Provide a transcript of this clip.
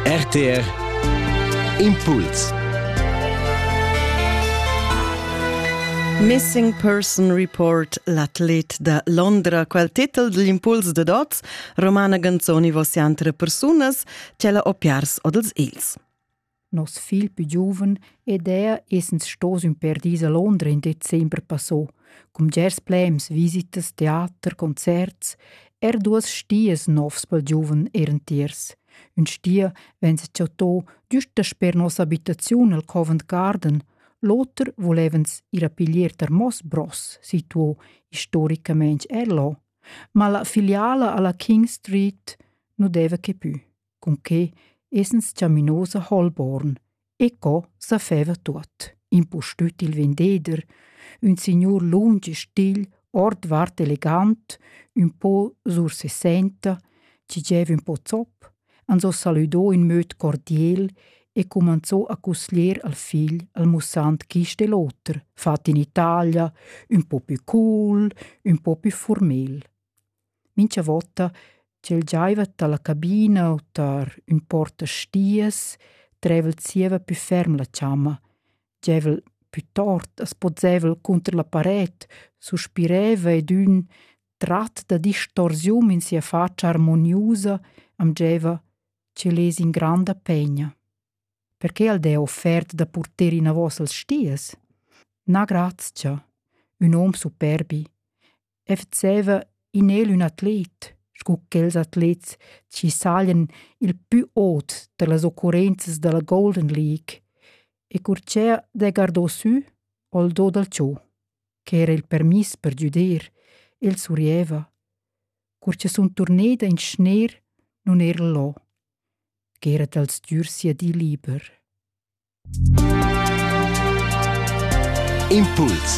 RTR Impuls Missing Person Report l'atlet da Londra. Quel titel digl impuls de dots romana canzoni vossian tre persunas, tg'ella opiars odels ils. Nos figl pü giuven ed er essens stos ün pêr dis a Londra in december passò, cun bgers plems, visitas, teater, concerts, er duos stias novs pel giuven eran tiers. Ün stia venza chattò güst dasper nossa abitaziun al Covent Garden, l'oter volevans ir a piglier tar Moss Bros, situo istoricamaing er là. Ma la filiala a la King Street nu deva que pü. cun che essens chaminos a Holborn e co sa feva tuot, impustüt il vendeder, ün signur lunsch e stil, ordvart elegant, ün po sursessenta, chi gieva ün po zop, ans ho salüdò in möd cordiel e cumanzò a cusglier al figl al mussand quist e l'oter, fat in Italia, ün po pü cool, ün po pü formel. mincha vota ch'el giaiva dalla cabina u tar ün portastias, dreva'l zieva pü ferm la chamma, giaivel pü tort as pozzaivel cunter la paret, suspireva ed ün trat da distorsiun in sia fatscha armoniusa am giaiva ch'el es in granda pegna. Perche al d'he offert da purter inavos als stias? Na grazcha, ün hom superbi, efzeva in el ün atlet, scu quels atlets chi sajan il pü ot da las occurrenzas da la Golden League, e cur cha de gardò sü al do dal cho, ch'era il permiss per güder, el surrieva. Cur cha sun turneda in schner, nun era là, ch'era dal stgür sia di liber. Impuls